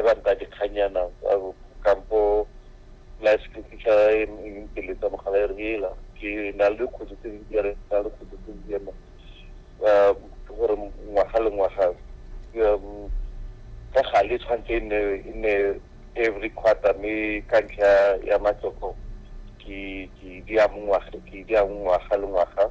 e ba nta dikganyana kampo life skilfiša pele tsa mogala e reela ke na le dikgwedi tse dintsi ya re na le dikgwedi tse dintsi ema um ke gore ngwaga le ngwaga um, ka gale tshwanetse e nne e nne every quarter mme ka ntlha ya matloko ke di a mongwaga ke di a mongwaga le ngwaga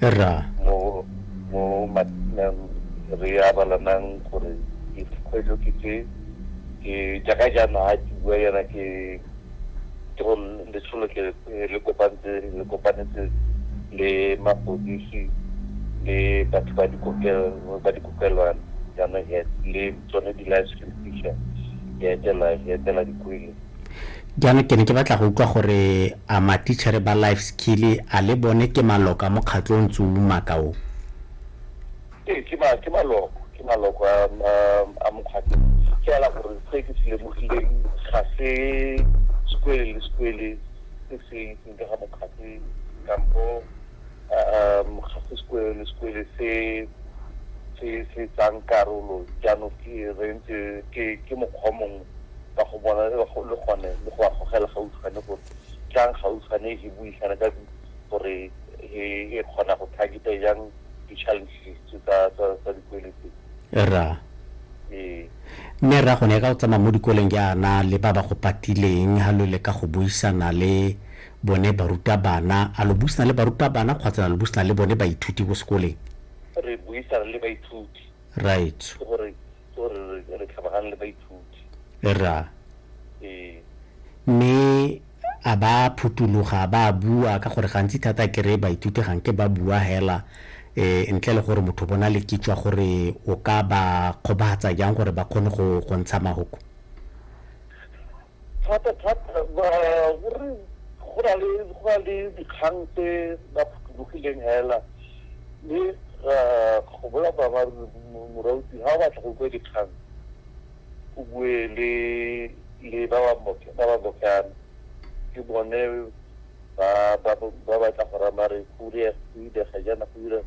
ra mo mo matinang re abalanang gore ke dikgwetlho ke tse ke jaaka jaana a ke bua yana ke ke go letsholo ke le kopantse le kopanetse le mapodisi le batho ba dikokelo ba dikokelwana jaana le tsone di-life restriction ya etela ya etela dikwele jaanong ke ne ke batla go utlwa gore a matitšhere ba life skill a le bone ke maloka mokgatlho o ntse o umaka o ee ke maloko ke maloko a mokgatlho fela gore se ke se lemogileng ga se sekwele le sekwele se se itseng ka ga mokgatlho kampo um ga se sekwele sekwele se se se tsang karolo jaanong ke re ntse ke ke mokgwa mongwe ka go bona le gone le go a gogela gautshwane gore tlang gautshwane e buisana ka gore e kgona go targeta jang di-challenges tsa dikwele tse ra ee mme ra gone ka go tsamaya mo dikoleng jaana le ba ba go patileng ga lo leka go buisana le Bone barutabana, a lo buisana le barutabana kgotsa la lo buisana le bone baithuti ko sekoleng? Re buisana le baithuti. Right. Ke gore ke gore re tlhabagane le baithuti. Ra. Ee. Mme a ba phuthuloga ba bua ka gore gantsi thata kere baithuti gang ke ba bua hela eh ntle le gore motho bona le kitswa gore o ka ba kgobatsa jang gore ba kgone go go ntsha mahoko. Thata thata gore go na le go na le dikgang tse ba phuthulogileng hela mme go bola boammaaruri morauti ga o batla go bue dikgang o bue le le ba ba bokana ke bone ba ba tla go raya mare go direga jaana go direga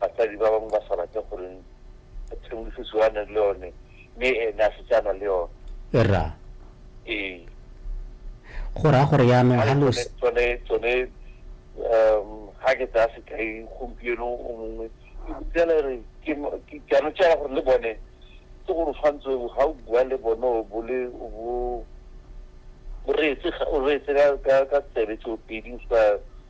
basadi ba bangwe ba sa rate gore tshedimosetso a nang le yone mme ene a setse a na le yone ra ee go raya gore yaanong ga lo tsone tsone um ga ke tsaya sekai gompieno o mongwe ke botsela re ke ke ano tsela gore le bone ke gore tshwanetse ga o bua le bone o bole o bo o reetse o reetse ka ka tsebe tso pedi sa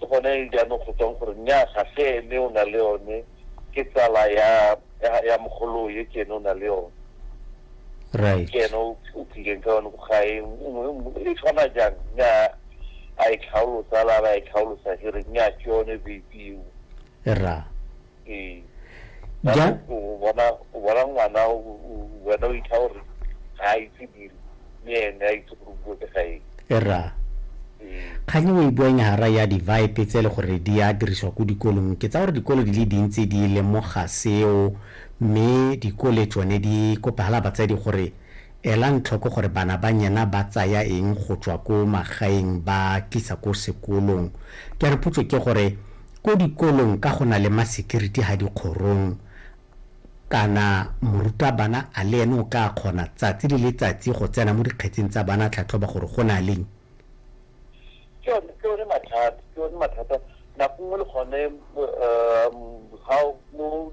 ke gone jaanong go tswang gore nya ga se ene o na le yone ke tsala ya ya mogolo ye ke ene o na le yone right ke ene o tlileng ka yone ga e e tshwana jang nya a e tlhaolosa la ba e tlhaolosa ke re nya ke yone baby ra ee Ja- Jaanong o bona o bona ngwana o- o- wena o itha gore ga a itse diri le ene a itse gore o bua ke ga eng era ee kgang o e buang ya gara ya di-vipe tse e le gore di a dirisiwa ko dikolong ke tsa gore dikolo di le dintsi di lemoga seo mme dikole tsone di kopagala batsadi gore ela ntlhoko gore bana ba nyena ba tsaya eng go tswa ko magaeng ba tlisa ko sekolong ke a re potso ke gore Ko dikolong ka go na le masekiriti ha dikgorong kana morutabana a le ene o ka kgona tsatsi le letsatsi go tsena mo dikgetseng tsa bana tlhatlhoba gore go na leng? Ke yone ke yone mathata ke yone mathata nako nngwe le gone ga mo